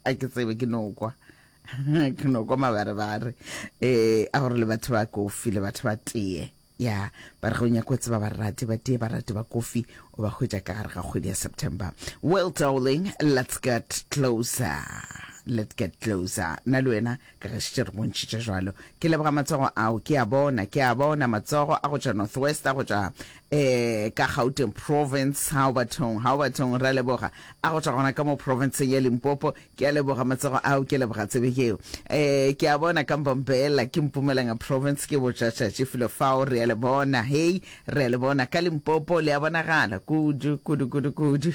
a ke tsebe ke no kwa ke no kwa mabarebare um a gore le batho ba kofi le batho ba tee ya ba re go nyako tseba barati ba tee barati ba kofi o ba hwetša ka gare ga kgwedi ya september well darling let's get closer let's get closer nna le wena Kriste, re bontšhitše jalo. Ke leboga matsogo ao, ke a bona, ke a bona matsogo a go tšwa Northwest, a go tšwa eh, ka Gauteng Province, Haubertong, Haubertong, re a leboga, a go tšwa gona ka mo Provinceng ya Limpopo, ke a leboga matsogo ao, ke leboga tsebe yeo. Eh, ke a bona ka Mbombela, ke Mpumalanga Province, ke botšatšatši filo fao, re a le bona, hei, re a le bona ka Limpopo, le a bonagala, kudu, kudu, kudu, kudu.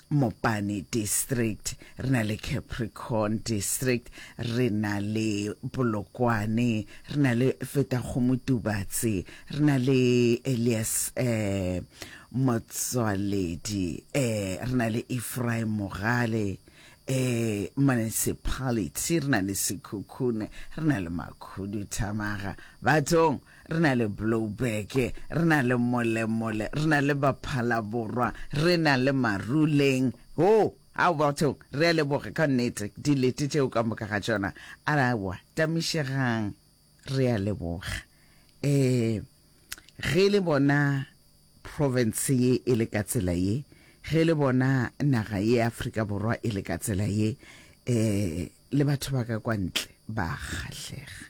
Mopane District, re na le Capricorn District, re na le Polokwane, re na le Fetakgomo Tubatse, re na le Elias eh, Motswaledi, eh, re na le Ephraim Mogale, eh, Municipality, re na le Sekhukhune, re na le Makhuduthamaga. Bathong! re na le Blouberg, re na le Molemole, re na le Baphalaborwa, re na le Maruleng. Hoo, ao bathong, re a leboga ka nnete, dilete tšeo ka moka ga tšona. Aowa, tamišegang, re a leboga. Um, ge le bona province ye e le ka tsela ye, ge le bona naga ye Afrika Borwa e le ka tsela ye, um le batho ba ka kwa ntle ba kgahlega.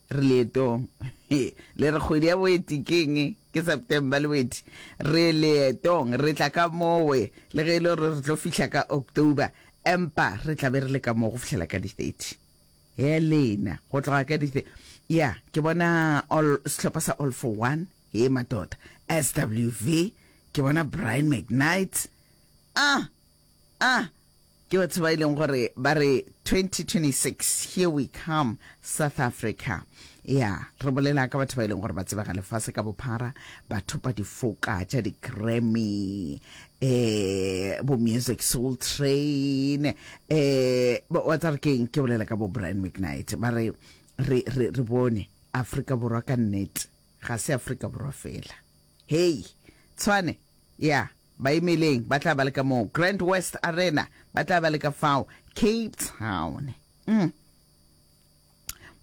Re leetong. Le re kgwedi ya Boeti ke eng? Ke September le Boeti. Re leetong. Re tla ka mowe, le ge e le gore re tlo fihla ka October, empa re tla be re le ka moo go fihlela ka di 30. Helena, go tloga ka di 30. Ya, ke bona all, sehlopha sa All for One. Hee, madoda. SWV, ke bona Brian McKnight. Ah! A ke batho ba e leng gore ba re 2026 here we come South Africa. Ya, re bolela ka batho ba e leng gore ba tsebega lefase ka bophara, ba thopa difoka tša di-Grammy, eh bo Music Soul Train, eh ba- wa tsare keng ke bolela ka bo Brian McKnight. Ba re re re re bone Afrika Borwa ka nnete, ga se Afrika Borwa fela. Hei, Tshwane, ya, baimeleng ba tla ba le ka moo. Grand West Arena, ba tla ba le ka fao. Cape Town. Mm.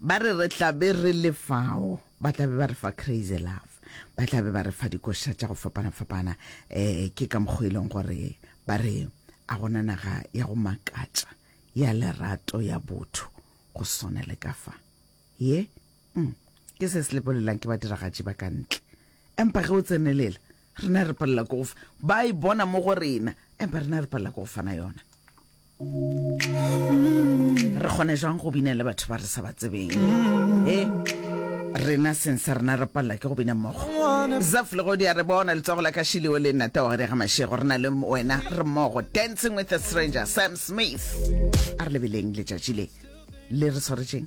Ba re re tla be re le fao. Ba tla be ba re fa Crazy Love. Ba tla be ba re fa dikoša tša go fapana-fapana. Eh, ke ka mokgwa e leng gore ba re a gona naga ya go makatša, ya lerato, ya botho, go swana le ka fa. Ye? Mm, ke se se lepolelang ke badiragatši ba ka ntle. Empa ge o tsenelela, rena re palela ko go ba e bona mo go rena, empa rena re palela ko go fana yona. Re kgone jwang go bina le batho ba re sa ba tsebeng? E? rena seng sa rena re palela ke go bina mmogo zaf le godi a re bona letsogo la ka shileo le nnata wa gare ga mašego re na le wena re mmogo dancing with a stranger sam smith a re lebeleng letšatši le le re tshwaretšeng